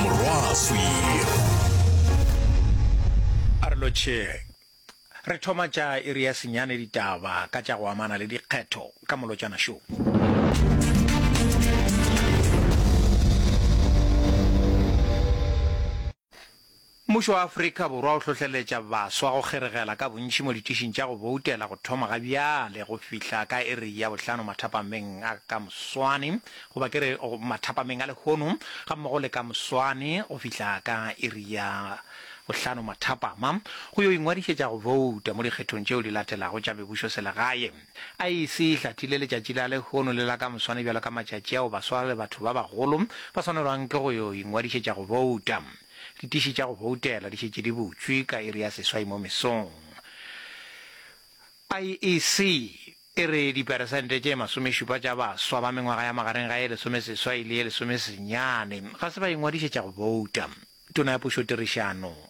morwaswi. A re lotšheng. Re thoma tša iri ya senyane ditaba ka tša go amana le dikgetho ka Molotšana Show. Mmušo wa Afrika Borwa o hlohleletša baswa go kgeregela ka bontši mo ditišing tša go boutela go thoma ga bjale go fihla ka iri ya bohlano mathapameng a ka moswane, goba ke re mathapameng a lehono, gammogo le ka moswane go fihla ka iri ya bohlano mathapama, go yo ingwadišetša go bouta mo dikgethong tšeo di latelago tša mebušoselegae. IEC e hlathile letšatši la lehono le la ka moswane bjalo ka matšatši ao baswa le batho ba bagolo ba swanelwang ke go yo ingwadišetša go bouta. Ditiši tša go boutela di šetše di butšwe ka iri ya seswai mo mesong. IEC e re diperesente tše masomešupa tša baswa ba mengwaga ya magareng ga ye lesomeseswai le ye lesomesenyane ga se ba ingwadišetša go bouta. Tona ya Pušotirišano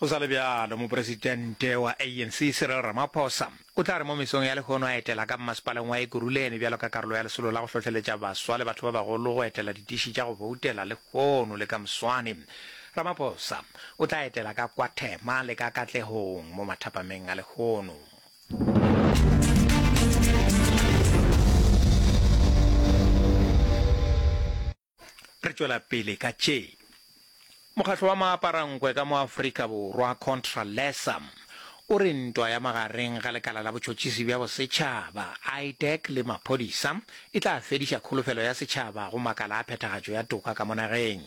Go sa le bjalo, mopresitente wa ANC Cyril Ramaphosa o tla re mo mesong ya lehono a etela ka mmasepaleng wa Ekurhuleni bjalo ka karolo ya lesolo la go hlohleletša baswa le batho ba bagolo go etela ditiši tša go boutela lehono le ka moswane. Ramaphosa o tla etela ka kwa Thema le ka Katlehong mo mathapameng a lehono. Re tšwela pele ka tše. Mokgatlo wa maaparankwe ka mo Afrika Borwa, Contra Lesam, o re ntwa ya magareng ga lekala la botšhotšhisi bja bosetšhaba, IDEC, le maphodisa e tla fediša kholofelo ya setšhaba go makala a phethagatšo ya toka ka mo nageng.